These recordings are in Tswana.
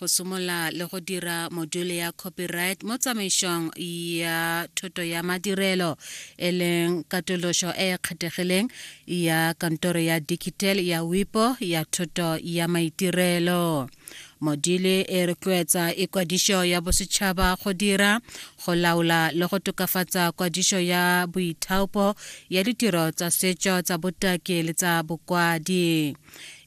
go somola le go dira module ya copyright mo tsamaisong ya thoto ya madirelo e leng katološo e e kgethegileng ya kantoro ya digital ya wipo ya thoto ya maitirelo module e rotloetsa ikwadišo ya bosetšhaba go dira go laola le go tokafatsa kwadišo ya boithaopo ya ditiro tsa setšo tsa botaki le tsa bokwadi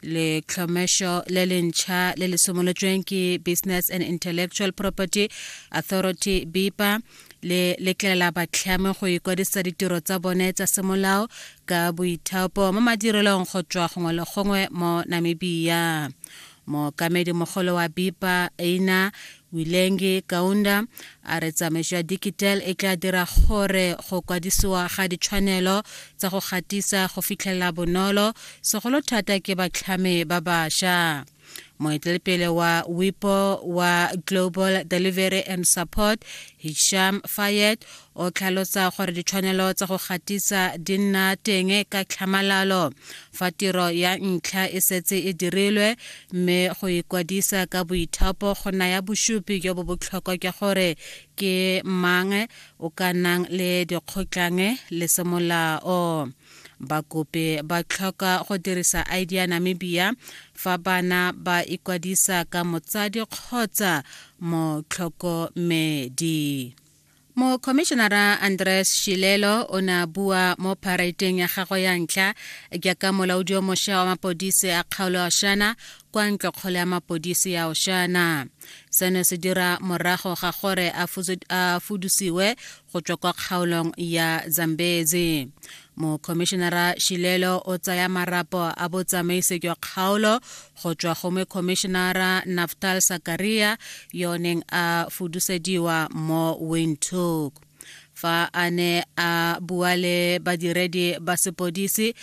letlhomešo le lentšha le le simolotsweng ke business and intellectual property authority bipa le letlela batlhami go ikwadisa ditiro tsa bone tsa semolao ka boithaopo mo madirelong go tswa gongwe le gongwe mo namibia mookamedi mogolo wa bipa eina Wilenge Kaunda a re tsamaiso ya Dikitel e tla dira gore go kwadisiwa ga ditshwanelo tsa go gatisa go fitlhelela bonolo, segolo thata ke batlhami ba basha. Moetelepele wa WIPO wa Global Delivery and Support, Hisham Fayed, o tlhalosa gore ditshwanelo tsa go gatisa di nna teng ka tlhamalalo fa tiro ya ntlha e setse e dirilwe mme go ikwadisa ka boithapo go naya bosupi jo bo botlhokwa jwa gore ke mang o ka nang le dikgotlang le semolao bakopi ba tlhoka go dirisa id ya namibia fa bana ba ikwadisa ka motsadi kgotsa motlhokomedi mokhomišenara andres shilelo o ne a bua mo paraiteng ya gagwe ya ntlha jaaka molaodi yo mošwa wa mapodisi a kgaolo ya oshana kwa ntlokgolo ya mapodisi ya oshana seno se dira morago ga gore a fudusiwe go tswa kwa kgaolong ya zambezi mokhomišenara shilelo o tsaya marapo a botsamaisi jwa kgaolo go tswa go mekhomišenara naftal sakaria yo neng a fudusediwa mo windhoek fa a ne a bua le badiredi ba sepodisi